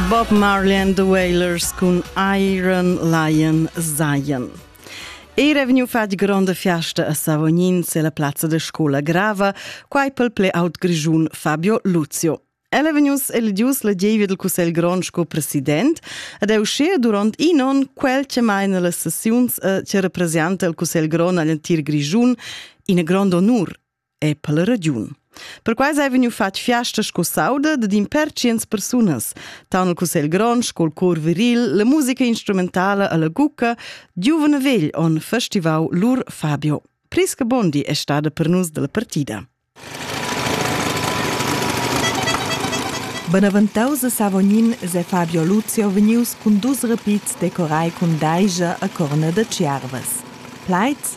Bob Marley and the Wailers cun Iron Lion Zion. Era vegniu fatg gronda fiasta a Savognin se la plazza de scola grava, quai pel ple aut grigiun Fabio Luzio. El è vegnius eligius la David del Cussegl Grond sco president ed è uscì durant in on quel che maina le sessiuns e che representa il Cussegl Grond agl entir Grigiun in grond onur e per la ragiun. Perquai hai vegniu fatg fiasta sco sauda da din per tschient persunas, tant il Cussegl grond sco il cor viril, la musica instrumentala alla gucca, giuven vegl on festivau lur Fabio. Prisca Bondi è stada per nus della partida. Benaventaus a Savognin se Fabio Lucio vegnius cun dus repits decorai cun daija a corna da Tschiervas. Plaids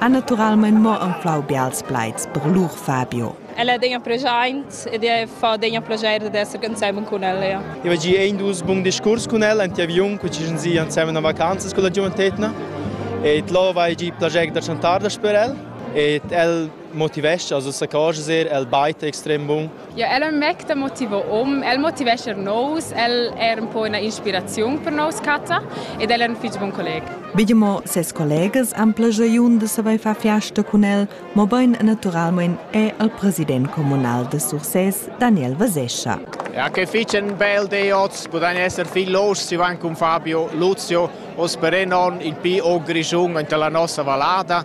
ha naturalmein mo anflau bials plaids per lur Fabio. Ella è degna preschaint ed è fa degna plaschair d'esser ensemen cun ella. Ja. Eu gi ein dus bun discurs cun ella ant aviun, cu ci zi ensemen a vacanzas con la giuventetna. Et lo vai gi plaschair da chantar da per el. Et el motivescha, also sa cosas er, el baita extrem bun. Ja, el è ün mec da motiver hom. El motivescha eir nous, el è eir ün po üna inspiraziun per nous catta ed el è ün fich bun colleg. Begemo ses collegas han plagiaun da savair far fiasta cun el, mobain naturalmain è el president communal da Sursès, Daniel Vasescha. Ja, che fich ün bel di oz, pudain esser viel los, si van cun Fabio Luzio, os per non in pi o Grischun enta la nossa vallada.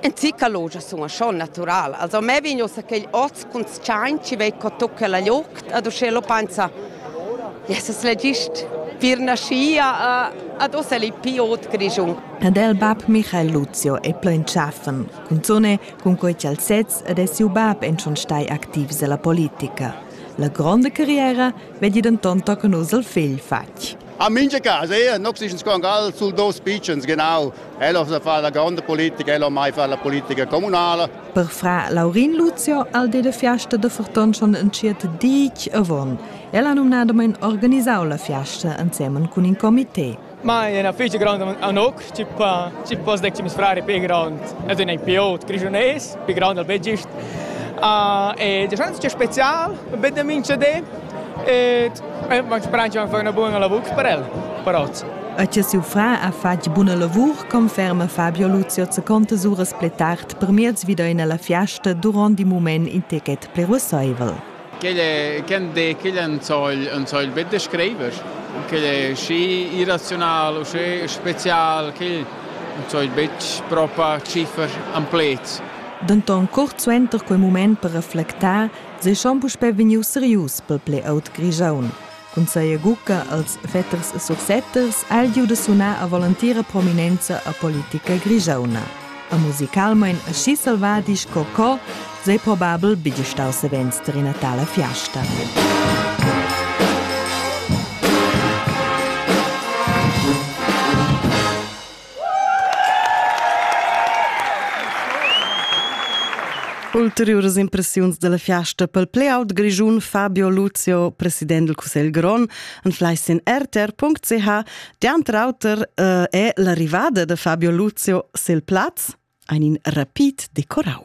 En Zicalogia sun a schon natural. Also me vegn ussa quegl oz cun tschain chi vei co tucca la liucht ad uschè lupanza. Jesus l'he gist pir naschia ad ussa l'he pii ot Grischun. Ed el bab Michael Luzio è plo entschaffen, cunzone cun quei ch'el sez ed è siu bab en schon stai activs ella politica. La gronda carriera vegli denton tochen uss il figl fatg. A mincha cas, eir nops dischan sco angal sul dos pitschens, genau. Ella sa fa la gronda politica, ella mai fa la politica comunala. Per fra Laurin Lucio al de de fiasta de forton schon entschiet dic avon. Ella numnadamain organisau la fiasta insemen cun in comité. Ma è una festa grande a Noc, Ti pa, ti poss decir meis frar è pi grond ed ün ei pi ot grischunais, pi grond al be gist. Uh, e da schans che spezial, be da mincha di. E ma speranza van far una buona lavur per el, per oz. E che siu fra ha fatg buna lavur, conferma Fabio Luzio seconta uras pli tard per miez vida in la fiasta durant il moment in ticket plevusaivel. Quel è, quel de, quel en soil, en soil bet de scriver. Quel è schi irrazional u schi spezial, quel en soil betg propa ciffer am pleds. Denton cuort suenter quei mument per reflectar, seschan puspei vegnius serius per pli ault Grischun. Cun saja gucca als Vetters e Sursetters ha el giu da sunar a volantira prominenza a politica grigiauna. A musicalmain aschi selvadi sco co sei probabel bigl stau savens tar ina tala fiasta. Ulteriuras impressiuns dalla fiasta pel play out grischun Fabio Luzio, president del Cussegl grond, anfleis in rtr.ch. Dianter auter eh, è l'arrivada da Fabio Luzio sil plaz, ein in rapid decorau.